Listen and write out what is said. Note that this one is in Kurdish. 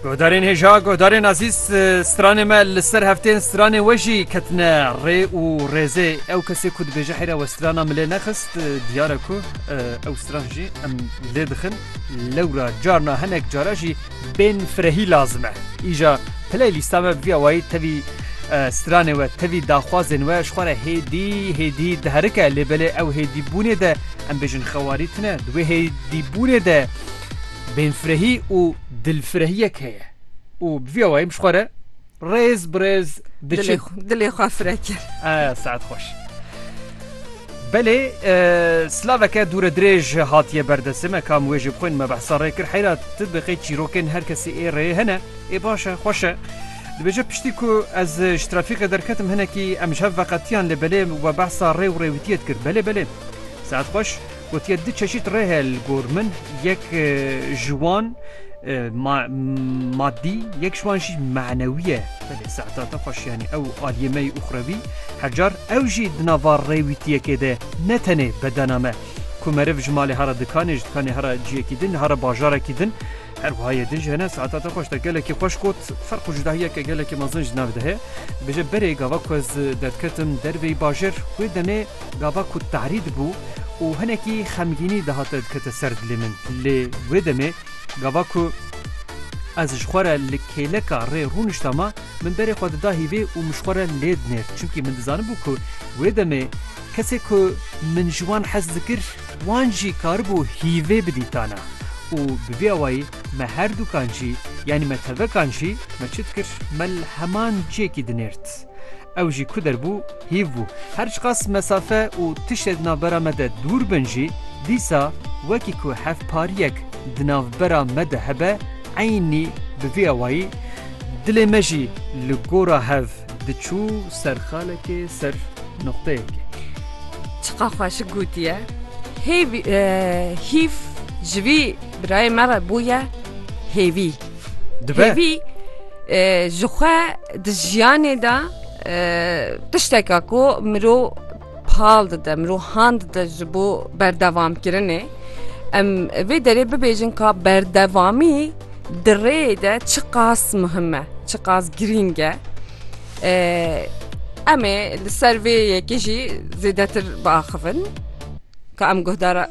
Guhdarên hêja guhdarên azîz stranê me li ser heftên stranê we jî ketine rê û rêzê ew kesê ku dibêje heyra we strana milê nexist diyare ku ew stran jî em lê dixin lewra carna hinek cara jî bên firehî lazim e îja piley lîsta me viya wayî tevî stranê we tevî daxwazên we ji xware hêdî hêdî diherike lê belê ew hêdîbûnê de em bêjin xewarî tine di wê hêdîbûnê de Bênfirehî û dilfirehiyek heye û bi vî awayî min ji xwe re rêz bi rêz diçe. Dilê xwe fire kir. Saet xweş. Belê silaveke dûre dirêj hatiye berdesê me kam wê jê bixwên me behsa rê kir heyra tu bi qê çîrokên her kesî ê rê hene ê baş e xweş e. Dibêje piştî ku ez ji trafîqê derketim hinekî em ji hev veqetiyan lê belê we behsa rê û rêwîtiyê dikir belê belê. Saet xweş. Gotiye du çeşît rê heye li gor min, yek ji wan madî yek ji wan jî menewî ye. Belê Seedata xweş yanî ew aliyê me yî uxrewî, her car ew jî di nava rêwîtiyekê de ne tenê bedena me. Ku meriv ji malê hera dikanê, ji dikanê hera ciyekî din, hera bajarekî din her wiha yê din jî hene. Seedata xweş te gelekî xweş got. Ferq û cudahiyeke gelekî mezin ji nav de heye. Dibêje berê gava ku ez derdketim derveyî bajêr wê demê Gava ku tarî dibû û hinekî xemgînî dihate dikete ser dilê min. Lê wê demê gava ku ez ji xwe re li kêleka rê rûnişta me, min berê xwe dida hîvê û min ji xwe re lê dinêr. Çimkî min dizanibû ku wê demê kesê ku min ji wan hez dikir, wan jî karibû hîvê bidîtana û bi vî awayî me herdûkan jî, yanî me tevekan jî me çi dikir, me li heman ciyekî dinêrt. Ew jî ku derbû hîv bû. Her çiqas mesafe û tiştê di navbera me de dûr bin jî, dîsa wekî ku hevpariyek di navbera me de hebe, eynî bi vî awayî dilê me jî li gora hev diçû ser xalekê, ser nuqteyekê. Çiqas xweşik gotiye. Hêvî, hîv ji vî birayê me re bûye hêvî. dibe Hêvî e, ji xwe di jiyanê de e, tişteka ku mirov pal dide mirov han dide ji bo berdevamkirinê em vê derê bibêjin ka berdevamî di rêyê de çi qas muhim e çi qas girîng e E, em ê li ser vê yekê jî zêdetir biaxivin ka em guhdara